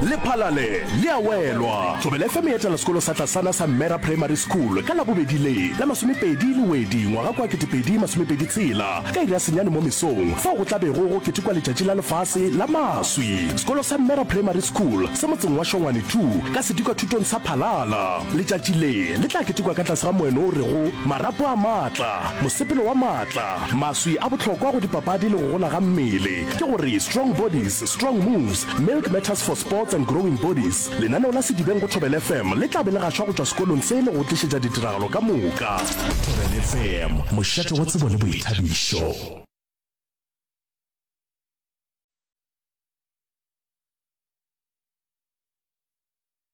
lephalale le a welwa thobela fm e etela sekolo sa tlasana sa mmera primary school ka labobedi le la masomepedi le wedi ngwaga kwa 2026 ka iri ya senyane mo mesong fao go tlabego go ketekwa letšatši la lefase la maswi sekolo sa mmera primary school se motseng wa shongwane 2 ka sedikwa thutong sa phalala letšatši le le tla ketekwa ka tlase ga moeno o rego marapo a maatla mosepelo wa maatla maswi a bohlokwa go dipapadi le go gola ga mmele Ke go re, Strong Bodies, Strong Moves, Milk Matters for Sports and Growing Bodies, lenaneo la Sedibeng go Thobela FM le tla be le gašwa go tšwa sekolong se le go o tlišetša ditiragalo ka moka. Thobela FM, mošate wa tsebo le boithabišo.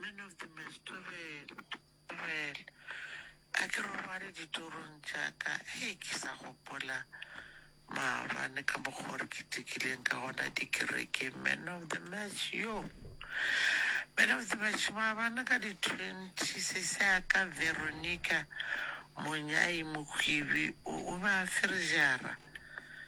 Man of the Mass, Tobel, Tobel, a ke robale ditorong tša ka, hei ke sa gopola maabane ka mokgwa gore ke tekileng ka gona dikereke. Man of the Mass, yo. Man of the Mass, maabane ka di-twenty, sese a ka Veronica Monyai Mokwibi o, o be a ferežara.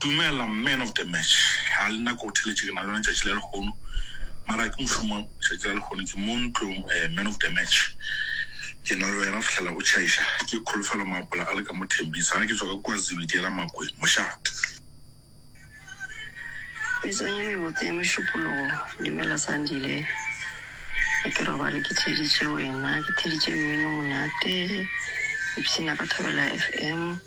Dumela man of the match, ha le nako go theletše ke na le yona tšatši la lehono mara ha ke mošomong tšatši la lehono ke mo ntlong eh, man of the match ke na le wena fihlela go tšhaiša ke kholofelo maapola a le ka mo Thembisa ha ke tswa ka kwa Zulu ke ela Makweng mošate. Metsong e mebotse ya mešupologo, dumela Sandile, ga ke robale ke theeditše wena, ke theeditše mmino monate, ipshina ka Thobela FM.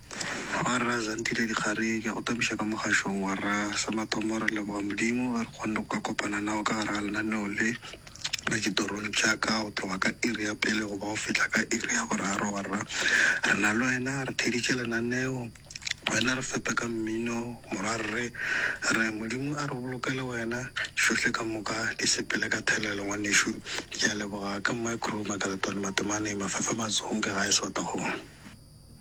Wa Rra Zandile Dikgare, ke a go tapiša ka mogašong wa Rra. Sa mathomo re leboga Modimo ge re kgonne go ka kopana nao ka gare ga lenaneo le la Ditorong tša Ka go tloga ka iri ya pele goba go fihla ka iri ya boraro. Wa Rra, re na le Wena, re theeditše lenaneo, Wena re fepe ka mmino, Morwa. Re re Modimo a re bolokele Wena, tšohle ka moka di sepele ka thelelo, ngwanešu. Ke a leboga ka Micro, Makaletwane, Matemane, Mafefe, Mazonge, gae Swatagong.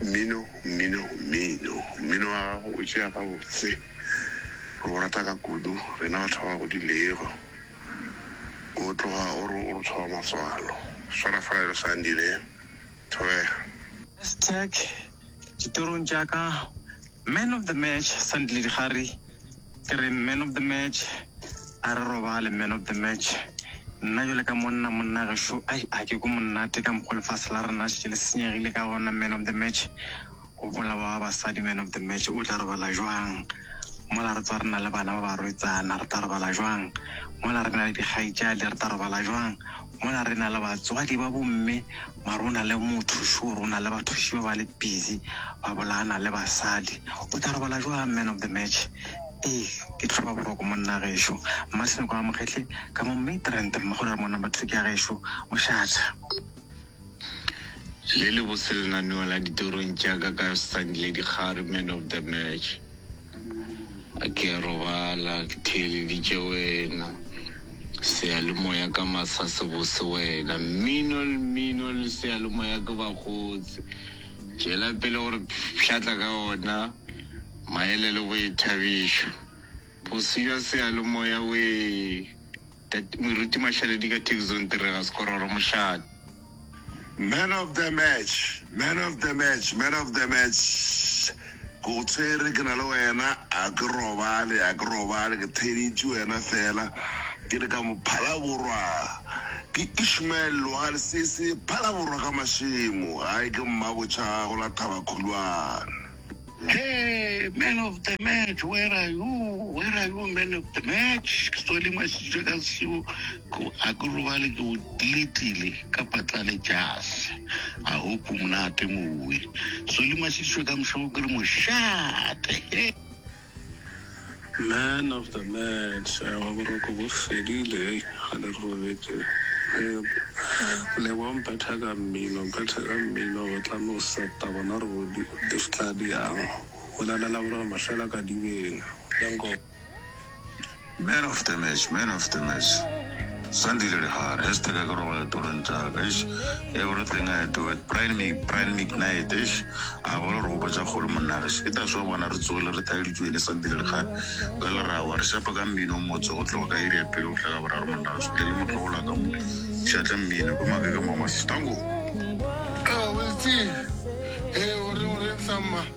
Mmino, mmino, mmino. Mmino wa gago o tšea gabotse. Re o rata ka kudu, rena batho ba ba godilego. O tloga o re o re tshwara matswalo. Swara fela bjalo Sandi ne. Thobega. Hashtag, Ditorong tša ka, Man of the Match, Sandile Dikgari. Ke re man of the match, a re robale man of the match. Nna jale ka monna, monna gešo, ai, a ke ko monnate ka mokgwa lefase la rena šetše le senyegile ka gona man of the match. Go bolawa wa basadi man of the match, o tla robala jwang? Mola re tswa re na le bana ba barwetsana, re tla robala jwang? Mola re na le dikgaitšadi, re tla robala jwang? Mola re na le batswadi ba bomme mare go na le motho sure go na le bathuši ba ba le busy ba bolayana le basadi. O tla robala jwang man of the match ei ke tlhoba boroko monna gešo. Mmasenoka wa Mokgetle ka mo Midrand mme go na le mo number two ke ya gešo Moshatha. Le le botse lenaneo la ditorong tša ka ka Sandile Dikgari man of the match. A ke a robala ke theeleditše wena, seyalemoya ka masa se bose wena, mmino le mmino le seyalemoya ke bakgotse, tšwela pele gore pshatla ka ona, maele le boithabišo, bosio seyalemoya wee. Tate Moruti Mašaledi ka Tech Zone Tirega Sekororo Mošate. Man of the match man of the match man of the match ke go tshwere ke na le wena a ke robale a ke robale ke theditše wena fela ke le ka mophalaborwa ke Ishmael Logal sese phalaborwa ka mašemo gae ke mmabotšha go la thabakhulwane Hey, man of the match, where are you? Where are you, man of the match? Ke tswale masitšwe ka seo ko a ke robale ke o diletile ka patlale jase. I hope o monate mowe. Tswale masitšwe ka mošo ke re mošate. Hey. Man of the match wa boroko bo fedile hei ga le robetše lebo mphetha ka mmino mphetha ka mmino go tlame go seta bona re bodi di fitla di yang go lalela borega mahlela ka dibeng ya nko Man of the match, man of the match Sandile Lehare, hashtag a ke robala ditorong tša ka, eish Everything I do at Brian Mick, Brian Mick night, eish A ba le gore gopa tša kgole monna gešo Ke that's why bona re tsogile re thaeleditšwe ene Sandile Lehare Ka lerago a re šapa ka mmino o motse Go tloga ka iri ya pele go fihla ka boraro monna gešo Tle le motlogolo ka mo Šatla mmino ko make ka mo Masetango Ewa, Weitsie, hee o reng, o reng sa mma?